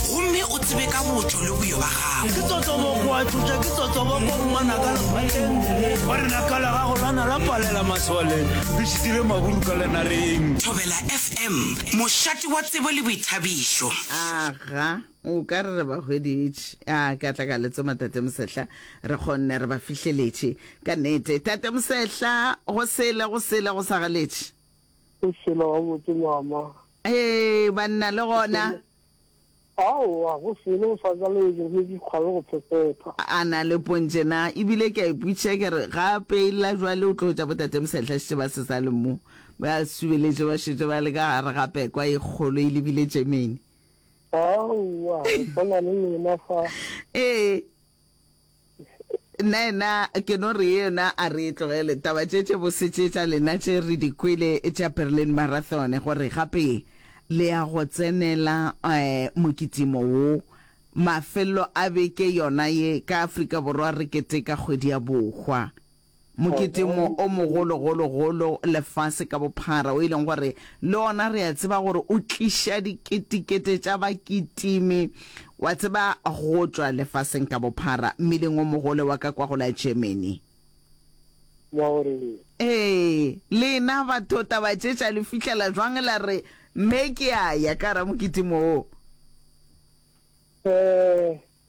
gomme o tsebe ka botšo le boyo ba gago ke totoboko a tlotša ke totoboko ngwana ka lefateng ba rena ka la gago lana la palela masole re šitile maburu ka lenareng thobela fm mošate wa tsebo le boithabišo aga o ka re re ba hweditše a ka tla ka letsoma tate mosehla re kgonne re ba fihleletše ka nete tate mosehla go sele go sele go sa galetše O tšhela gabotse mama. Hee banna le gona. Aowa go selo o sa ka leetšo mme ke kgwabe go phephetha. A na le pontše na? E bile ke a ipotšiša ke re ga a peella bjale o tlo tša botate Mosehlasitše ba se sa le mo, ba subeletše ba šetše ba le ka gare ga pekwa e kgolo e lebile tšemeni. Aowa re swana le lena fa. Ee. Nnaena ke no re yena a re tlogele taba tše tše bose tše tša lena tše re di kwele tša Berlin Marathon gore gape le ya go tsenela um mokitimo wo mafelelo a beke yona ye ka Afrika Borwa re keteka kgwedi ya bohwa. Moketemo o mogologologolo lefase ka bophara, o e leng gore le ona re a tseba gore o tliša diketekete tša baketimi, wa tseba, go tšwa lefaseng ka bophara, mmileng o mogolo wa ka kwa go la Germany. Wa gore eng? Ee, lena batho taba tše tša le fihlela jwang? La re, Mme, ke a ya ka gare ga moketimo wo. Ee.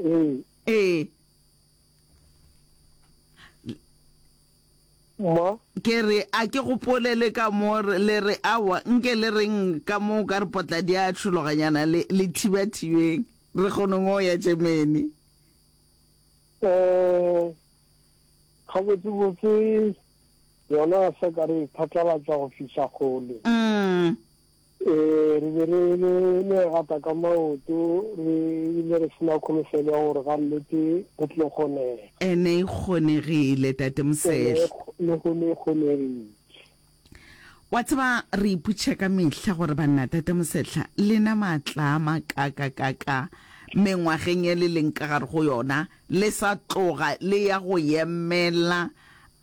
Ee. Ee. Ma. Ke re a ke gopole le ka mo le re awa nke le reng ka mo ka re potla di a tšhologanyana le le thiba thibeng re kgone ngo ya Germany. Eh ga botse botse yona se ka re phatlalatsa go fihla gole. Mm. Ee, re be re le legata ka maoto, re bile re se na kholofelo ya gore ga nnete go tlo kgonega. E ne e kgonegile, Tate Mosehla. Le go ne e kgonegile. Wa tseba, re ipotša ka mehla gore, Banna, Tate Mosehla, le na maatla a makakakaka mengwageng e le leng ka gare go yona le sa tloga le ya go yemela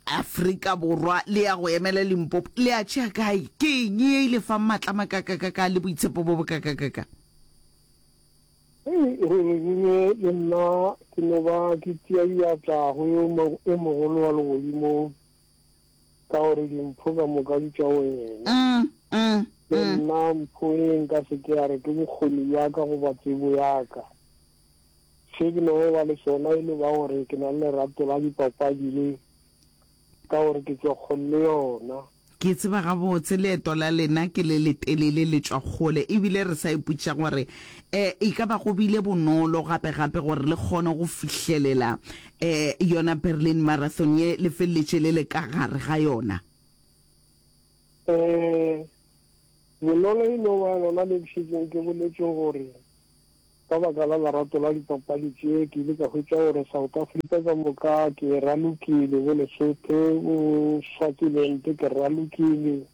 Afrika Borwa le ya go emela Limpopo le a tšea kae? Ke eng ye e le fang matla a makakakaka le boitshepo bo bokakakaka? Hei, Rororure le nna ke no ba ke tia diatla go yo e mogolo wa legodimong, ka gore dimpho ka moka di tša wena. Le nna mpho e nka se ke ya re ke bokgoni bja ka goba tsebo ya ka. Se ke no ba le sona e no ba gore ke na le lerato la dipapadi le ka gore ke tswa kgole le yona. Ke tseba gabotse leeto la lena ke le letelele le tšwa kgole ebile re sa ipotšiša gore um e ka ba go bile bonolo gape-gape gore le kgone go fihlelela um yona Berlin Marathon ye le feleletše le le ka gare ga yona. Um bonolo e no ba lona le ke šetšeng ke boletše gore Ka baka la lerato la dipapadi tše, ke ile ka hwetša gore South Africa ka moka ke e ralokile, bo Lesotho, bo Swaziland ke re ralokile.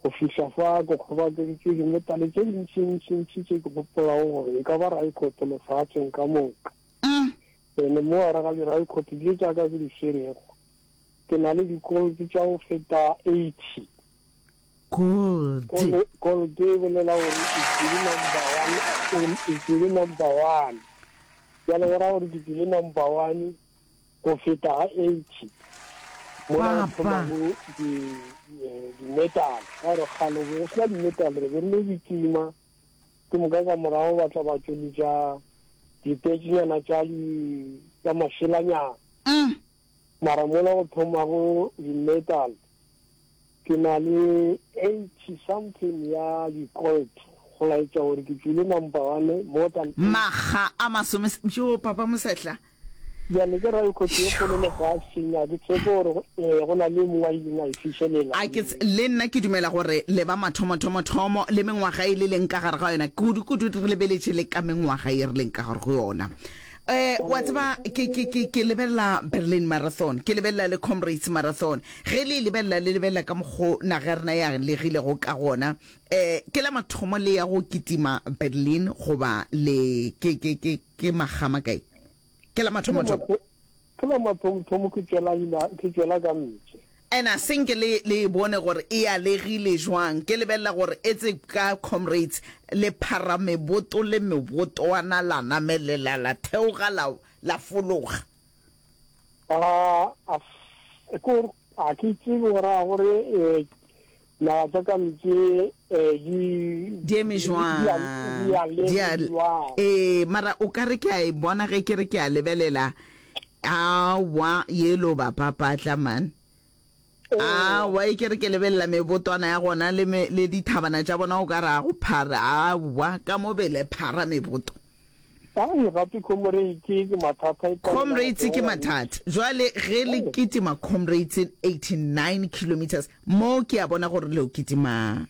Go fihla fa ke kgobakantše dimetalle tše dintšintšintši tše ke gopolago gore e ka ba raekhoto lefaatseng ka moka. Ene mo gare ga diraekhoto tše tša ka ke di swerego, ke na le dikolto tša go feta 80. Gold. Gold e bolela gore Itswile number one, Itswile number one. Jalo go ra gore ke tswile number one go feta ga eighty. Mola go thomago di-metal. Ka gore kgale go sena di-metal re be re le ditsima. Ke moka ka morago ba tla ba tšweletša dipetšenyana tša tša mašelanyana. Mara mola go thomago di metal ke na le 80 something ya di colt go laetša gore ke tswile number one more than 80. Makga a masome yoo papa Mosehla. Bjale ke ra ikgotsi ye kgolo lefaseng a ke tshepe gore go ee go na le mongwe a ileng a e fišelela. A ke le nna ke dumela gore le ba mathomo thomo thomo le mengwaga e le leng ka gare ga yona kudu kudu re lebeletše le ka mengwaga ye re leng ka gare go yona. Eh, wa tseba ke ke ke ke lebelela Berlin Marathon, ke lebelela le Comrades Marathon. Ge le e lebelela le lebelela ka mokgo naga ya rena ya legilego ka gona. Eh, ke la mathomo le ya go kitima Berlin goba le ke ke ke ke magama kae. Ke la mathomo thomo. Ke la mathomothomo ke tšwela ila, ke tšwela ka ntle. And a senke le, le e bone gore e alegile jwang. Ke lebelela gore etse ka, comrades, le phara meboto le mebotoana, la namelela, la theoga, la, la fologa. A, a, a ke gore, a ke tsebe gore a gore, eh, Naga tša ka mpše di. Di eme jwang? Di a. Ee, mara o ka re ke a e bona ge ke re ke a lebelela. Awa, yelo ba papatla man. Awa, e ke re ke lebelela mebotwana ya gona le dithabana tša bona o ka re a go phara. Awa, ka mo bele phara meboto. Ga e gape comrades ke mathata e palelwa Comrades ke gotelela mix. mathata. Jwale ge le kitima comrades 89 kilometres mo ke a bona gore leo kitima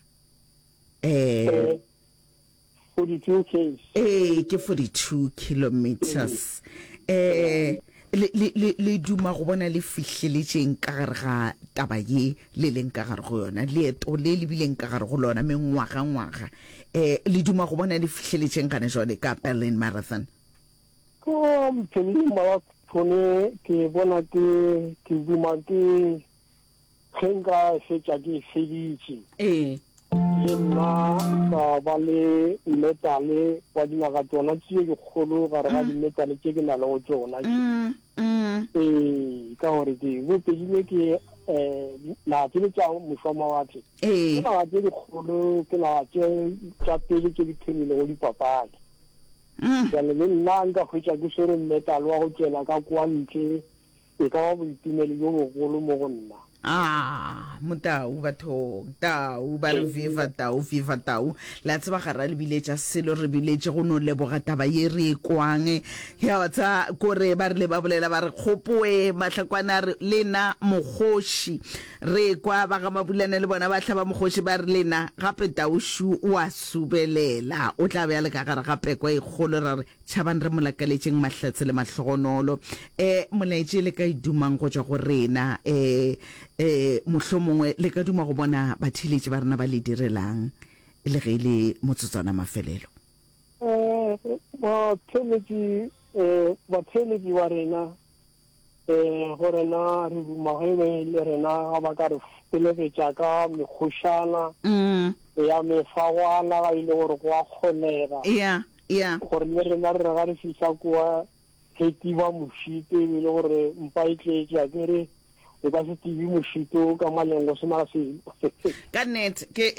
eh Eh, 42 Ks. ee ke 42 kilometres. Eh Le, le, le, le duma go bona le fihleletšeng ka gare ga taba ye le leng ka gare go yona, leeto le le bileng ka gare go lona mengwagangwaga? Eh, le duma go bona le fihleletšeng gana jwale ka Berlin Marathon? Go, Mthaniya Marathon ke bona ke, ke duma ke, Ge nka fetša ke e feditše. Ee. Le nna ka ba le metale wa dinaga tšona tše dikgolo gare ga dimetale tše ke na le go tšona tše. Ee, ka gore ke bo pedile ke um naga tše le tša mošwa mawatle. Ee. Ke naga tše dikgolo, ke naga tše tša pele tše di phemilego dipapadi. Jale le nna nka hwetša ke swere metale wa go tšwela ka kwa ntle E ka ba boitumelo bjo bogolo mo go nna. Aah, motau bathong, tau ba re viva tau, viva tau. Le a tseba ga ra le biletša selo, re biletše go no leboga taba ye re e kwang. Ya wa tsa kore ba rile ba bolela ba re kgopoe mahlakwana a re le na mokgoši. Re kwa ba ga Mabulana le bona ba hlaba mokgoši ba re le na gape tau shu wa subelela. O tla be a le ka gare ga peko e kgolo ra re Tšhabang re mo lakaletšeng mahlatse le mahlogonolo. E, Molaetši le ka e dumang go tšwa go rena. E, e, Mohlomongwe le ka duma go bona batheeletši ba rena ba le direlang le ge e le motsotswana mafelelo. E, Batheeletši, e, batheeletši ba rena Ee, go rena re duma ge be le rena ga ba ka re felegetša ka mekgošana ya mefagwana ga e le gore go a kgonega gore le rena re re ga re fihla kua re tiba mošito e be e le gore mpa e tletše a kere o ka se tibe mošito ka maleng go sena selo ka net ke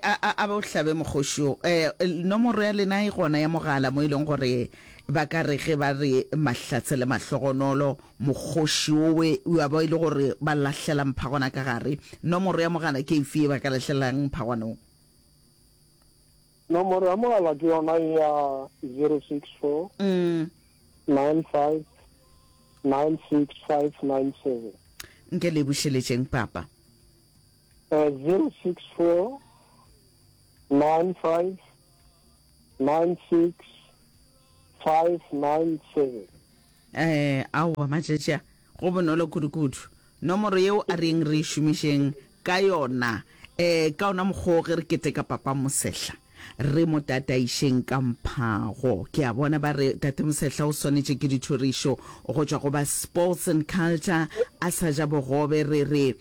a bo hlabe mokgoši o nomoro ya lena e gona ya mogala mo e leng gore Ba ka re ge ba re mahlatse le mahlogonolo, mokgoši wowe o a ba e le gore ba lahlela mphagwana ka gare. Nomoro ya mogala ke efe ye ba ka lahlelang mphagwanong? Nomoro ya mogala ke yona e ya 064 9596597. Nke le e bušeletšeng, Papa. 064 9596597. 96597. Ee, aowa, matšatši a, go bonolo kudukudu. Nomoro yeo a reng re e šomišeng ka yona. Ee, ka ona mokgwa o ge re keteka Papa Mosehla, re mo tataišeng ka mphago. Ke a bona ba re Tate Mosehla o swanetše ke dithorišo go tšwa go ba Sports and Culture, a sa ja bogobe, re re,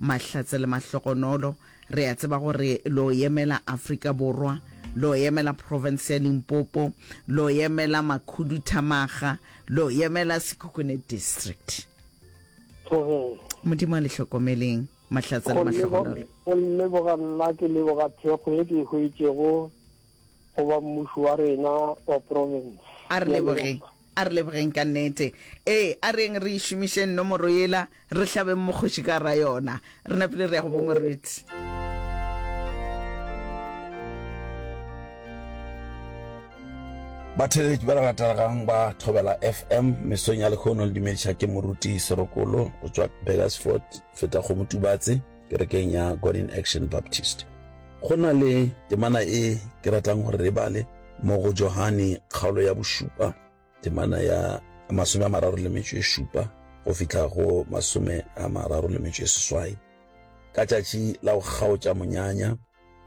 Mahlatse le Mahlokonolo, re a tseba gore lo emela Afrika Borwa, lo emela province ya Limpopo, lo emela Makhuduthamaga, lo emela Sekhukhune District. Modimo a le hlokomeleng, Mahlatse le Mahlokonolo. Go leboga nna ke leboga thekgo ye ke e hwetšego. goba mmušo wa rena wa profense. A re lebogeng, a re lebogeng ka nnete. Ee, a reng re e šomišeng nomoro yela, re hlabeng mokgoši ka gara yona. Re napile re ya go bo moruti. Batheeletši ba re ratelegang ba Thobela FM mesong ya lekhono le dumediša ke moruti Serokolo go tšwa Burgersfort, Fetakgomo Tubatse. kerekeng ya God in Action Baptist. Go na le temana e ke ratang gore re bale mo go Johane kgaolo ya bošupa temana ya masome a mararo le metšo e šupa go fitlha go masome a mararo le metšo e seswai ka tšatši la go kgaotša monyanya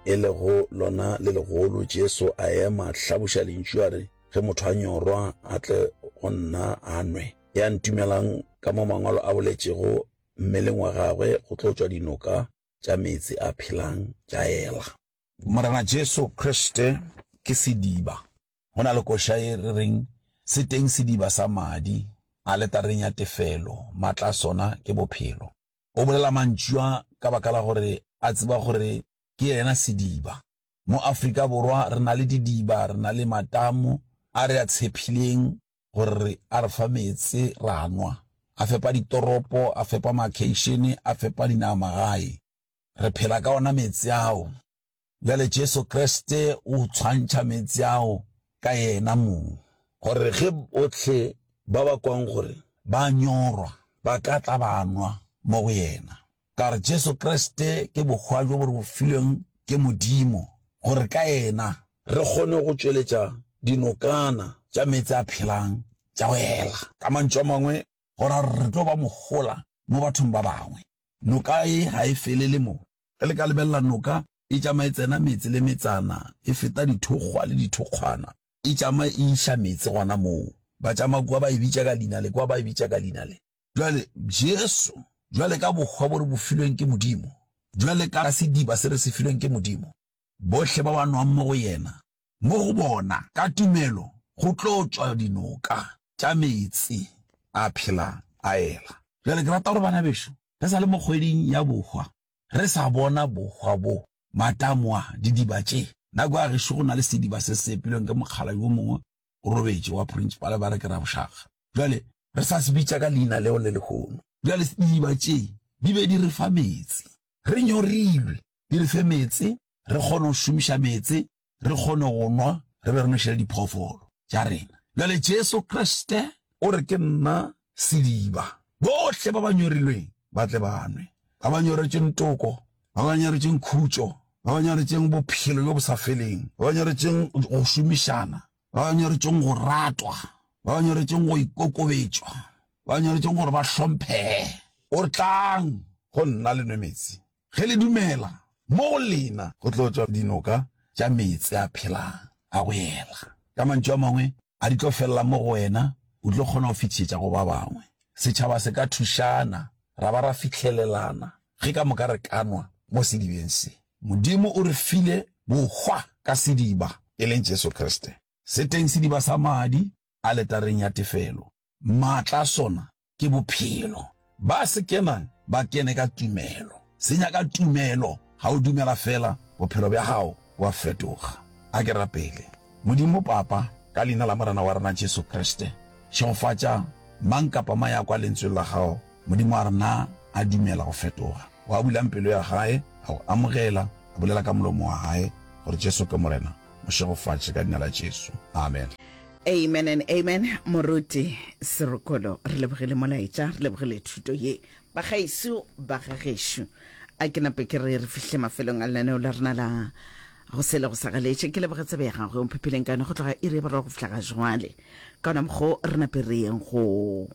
e lego lona le legolo jesu a ema hlabuša lentšu a re ge motho a nyorwa a tle go nna a nwe ya ntumelang ka mo mangwalo a boletšego mmeleng wa gagwe go tlo tšwa dinoka tša meetse a phelang tša ela. Morena Jesu Kriste ke sediba. Go na le koša ye re reng, Se teng sediba sa madi, aletareng ya tefelo, matla a sona ke bophelo. O bolela mantšu a ka baka la gore a tseba gore ke yena sediba. Mo Afrika Borwa re na le didiba, re na le matamo a re a tshephileng gore a re fa meetse ra nwa, a fepa ditoropo, a fepa makheišene, a fepa dinagamagae. Re phela ka ona meetse ao. Bjale Jesu Kriste o tshwantšha meetse ao ka Yena mong. Gore ge bohle ba ba kwang gore ba nyorwa ba ka tla ba nwa mo go Yena. Ka gore Jesu Kriste ke bokgwa bjo bo re bofilweng ke Modimo, gore ka yena re kgone go tšweletša dinokana tša meetse a phelang tša go ela. Ka mantšu a mangwe, go ra gore re tlo ba mohola mo bathong ba bangwe. Noka e ga e felele mo. Ge le ka lebelela, noka e tšama e tsena metse le metsana, e feta dithokgwa le dithokgwana, e tšama e iša meetse gona moo. Ba tšama kua ba e bitša ka leina le, kua ba e bitša ka leina le. Bjale, Jesu, bjale ka bohwa bo re bo filweng ke Modimo, bjale ka sediba se re se filweng ke Modimo, bohle ba ba nwang mo go Yena, mo go bona, ka tumelo, go tlo tšwa dinoka tša meetse a phelang, a ela. Bjale, ke rata gore, bana bešo, re sa le mo kgweding ya bohwa, re sa bona bohwa bo, matamo a, didiba tše, nako ya gešo go na le sediba se se epilweng ke mokgalabje wo mongwe, o robetše, wa Purintšipale ba re ke Rabošakga. Bjale, re sa se bitša ka leina leo le lehono. Bjale, didiba tše di be di re fa meetse. Re nyorilwe, di re fe meetse, re kgone go šomiša meetse, re kgone go nwa, re be re nwešele diphoofolo tša rena. Bjale, Jesu Kriste o re, Ke nna sediba. Bohle ba ba nyorilweng ba tle ba nwe, ba ba nyoretšweng toko, ba ba nyoretšweng khutšo, ba ba nyoretšweng bophelo bjo bo sa feleng, ba ba nyoretšweng go šomišana, ba ba nyoretšweng go ratwa, ba ba nyoretšweng go ikokobetšwa, ba ba nyoretšweng gore ba hlomphege. O re, Tlang go nna le nwe metsi. Ge le dumela, mo go lena go tlo tšwa dinoka tša meetse a phelang a go ela. Ka mantšu a mangwe, a di tlo felela mo go wena, o tlo kgona go fetišetša go ba bangwe. Setšhaba se ka thušana, ra ba ra fihlelelana ge ka moka re ka nwa mo sedibeng se. Modimo o re file bohwa ka sediba, e leng Jesu Kriste. Se teng sediba sa madi a letareng ya tefelo. Maatla a sona ke bophelo. Ba se kenang ba kene ka tumelo. Se nyaka tumelo. Ga o dumela fela, bophelo bja gago bo a fetoga. A ke rapele. Modimo Papa, ka Leina la Morena wa rena Jesu Kriste, šegofatša mang kapa mang ya kwa Lentsweng la Gago, Modimo, a re na a dumela go fetoga. O a bulang pelo ya gae, a Go amogela, a bolela ka molomo wa gae gore Jesu ke Morena, mo šegofatše ka Leina la Jesu. Amen. Amen and amen moruti Serokolo re lebogile molaetša re lebogile thuto ye bagaeso ba ga gešo a ke nape ke re re fihle mafelong a lenaneo la rena la go se le go sa galetše ke leboge tsebe ya gagwe o mphephileng ka yone go tloga iri ya boraro go fihla ga jwale ka ona mokgo re nape re yeng go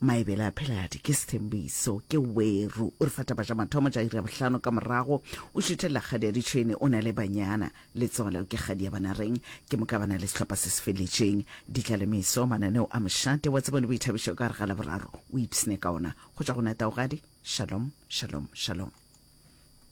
Maebele a Pheladi ke Sethembiso ke Weru o re fa taba tša mathomo tša iri ya bohlano ka morago o šuthelela kgadi ya ditšhwene o na le banyana letsogo leo ke kgadi ya banareng ke moka ba na le sehlopha se se feletšeng ditla le meso mananeo a mošate wa tsebo le boithabišo ka gare ga laboraro o ipsne ka ona go tšwa go nataogadi shalom shalom shalom